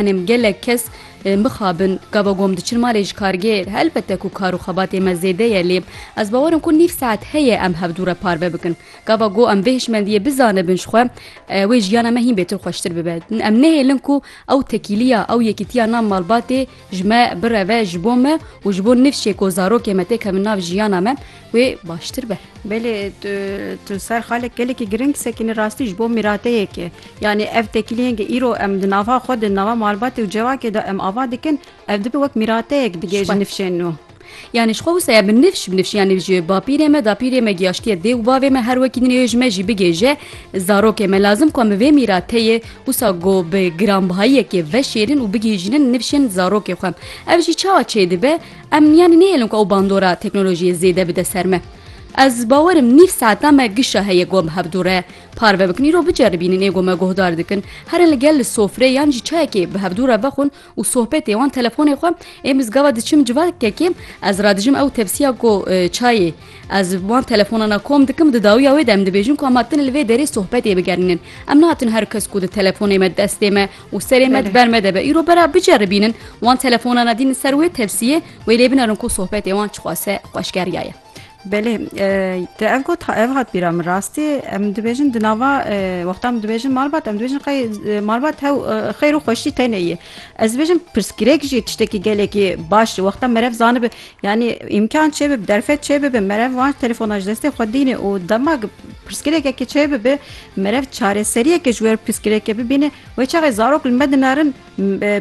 Em gelek kes mixabin gava gom diçin malê ji kargêr. Helbete ku kar û xebatê me zêde ye lê ez bawer im ku nîv saet heye em hevdû re parve bikin. Gava go em vê hişmendiyê bizanibin ji xwe wê jiyana me hîn bêtir xweştir bibe. Em nehêlin ku ew tekîliya, ew yekîtiya nav malbatê ji me bireve ji bo me û ji bo nifşê ku zarokê me têkevin nav jiyana me. wê baştir be. Belê tu ser xalek gelekî giring sekîne rastî ji bo mîrateyekê. Yanî ev tekîliyên ke îro em di nava xwe di nava malbatê û cevakê de em ava dikin ev dibe wek mîrateyek dige ji nifşên nû. Yani ji xwe wisa ya bi nifş bi nifş yani ji bapîrê me dapîrê me giyaşkiyê dê û bavê me her wekî din ê ji me jî bigêje zarokê me lazim ku em bi vê mîrateyê wisa go bi giranbihayiyekê veşêrin û bigihîjînin nifşên zarokê xwe ev jî çawa çêdibe Em yanî nêhêlin ku ew bandora teknolojiyê zêde bide ser me. Ez bawer im nîv saeta me gişa heye ku em hevdu re parve bikin. Îro biceribînin ê ku me guhdar dikin herin li gel li sofrê yan jî çayekê bi hevdu re vexwin û sohbetê wan telefonê xwe ê min zgava diçim civa kekê ez radijim ew tepsiya ku çayê ez wan telefonana kom dikim di dawiya wê de em dibêjin ku em hatine li vê derê sohbetê bigerînin. Em nehatin her kes ku di telefonê me destê me û serê me di ber me de be. Îro bera biceribînin wan telefonan e dînin ser wê tevsiyê wê lê binerin ku sohbetê wan çixwase xweşkeriya ye. Belê te ev got ev hat bîra min rastî em dibêjin di nava wexta min dibêjin malbat em dibêjin qey malbat hew xeyr û xweşî tenê ye ez dibêjin pirsgirêk jî tiştekî gelekî baş wexta merev zanibi Yanî îmkan çêbibe, bi derfet çêbibe merev wan telefona ji destê xwe dîne û dema pirsgirêkeke çêbibe merev çareseriyeke ji wê re pirsgirêke bibîne wê çaxê zarok li me dinarin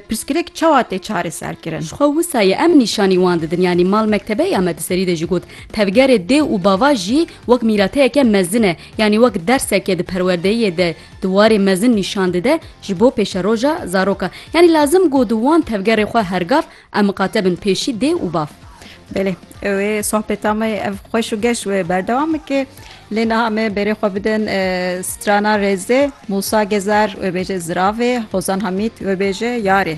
pirsgirêk çawa tê çareserkirin. Ji xwe wisa ye em nîşanî wan didin yanî mal mektebe ya me di serî de jî got tevgerê dê û bava jî wek mîrateyeke mezin e yanî wek derseke di perwerdeyiyê de di warê mezin nîşan dide ji bo pêşeroja zaroka yanî lazim got wan tevgerê xwe hergav Em miqate bin pêşî dê û bav. Belê wê sohbeta me ev xweş û geş wê berdewam bike. Lê niha me berê xwe bidin e, strana rêzê Musa Gezer wê bêje ziravê, Hozan Hamît wê bêje yarê.